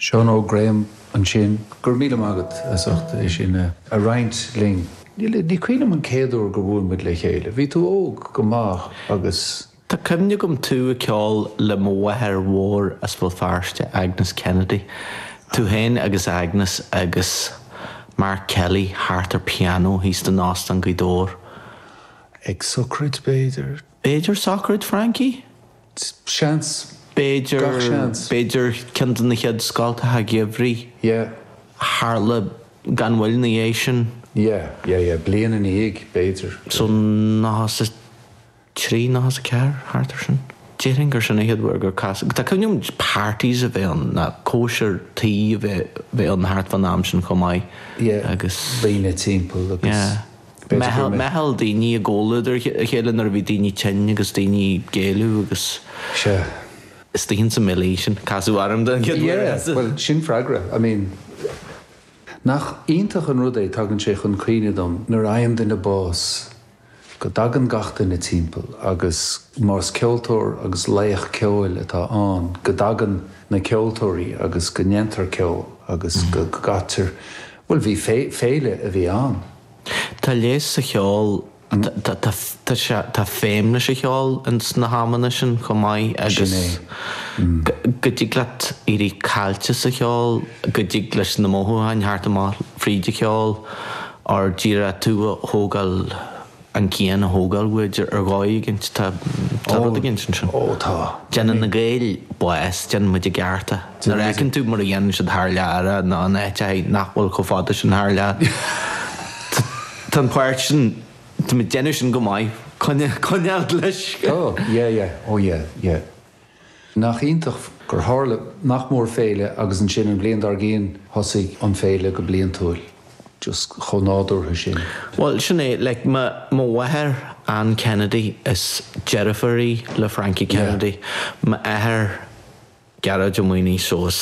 Seán Óg Graham ansin. Go raibh míle maith agat as ucht é sin a roinnt linn. Níl, ní cuimhním an chéad uair gur bhuail muid le chéile. Bhí tú óg go maith agus. Tá cuimhne agam tú ag ceol le mo mháthair mhór as Béal Feirste, Agnes Kennedy. Tú féin agus Agnes agus Mark Kelly thart ar pianó thíos in Óstán Ghaoth Dobhair. Ag sochraid b'fhéidir? B'fhéidir sochraid Frankie? Seans. B'fhéidir. Gach seans. B'fhéidir ceann de na chéad scoileanna geimhridh. Yeah. Tharla gan mhoill ina dhiaidh sin. Yeah, yeah, yeah. Bliain ina dhiaidh, b'fhéidir. So nócha a trí, nócha a ceathair, thart ar sin. Déarfainn gur sin a chéad uair gur casadh. Tá cuimhne agam parties a bheith ann, nó cóisir tí a bheith ann thart fán am sin chomh maith. Yeah. Agus. Daoine timpeall agus. Yeah. b'fhéidir gur. Meitheal daoine i gcomhluadar a chéile nuair a bhí daoine tinn agus daoine ag géilleadh agus. Sea. istigh insa mbaile sin. Casadh orm den chéad uair as. Yeah, bhuel, sin freagra, I mean. Nach iontach an rud é, tagann sé chun cuimhne dom nuair a fhaigheann duine bás go dtagann gach duine timpeall agus más ceoltóir agus laoch ceoil atá ann go dtagann na ceoltóirí agus go ndéantar ceol agus go gcaitear Bhuel, bhí féile a bhí ann. Tá leigheas sa cheol, tá feidhm leis an cheol in sna hamanna sin chomh maith agus go dtig leat éirí caillte sa cheol, go dtig leis na mothúcháin theacht amach fríd an cheol ár dtíre tú a thógáil. an cian a thógáil uaid ar dhóigh éigint. Tá rud éigint ansin. Ó, tá. Déanann na Gaeil bás, déanann muid i gceart é. Nuair a fheiceann tú mar a dhéanann siad thar lear é, nó in áit eicínt nach bhfuil chomh fada sin thar lear, tá an páirt sin, déanann sinn go maith, coinneáil leis. Tá, yeah, yeah, ó yeah, yeah. Nach iontach gur tharla nach mór féile agus ansin an bhliain dár gcionn thosaigh an féile go bliantúil. Just chomh nádúrtha sin. Bhuel, sin é, like, mo, mo mháthair Ann Kennedy, is deirfiúr í le Frankie Kennedy. Yeah. M'athair Gearóid Ó Maonaigh, so is.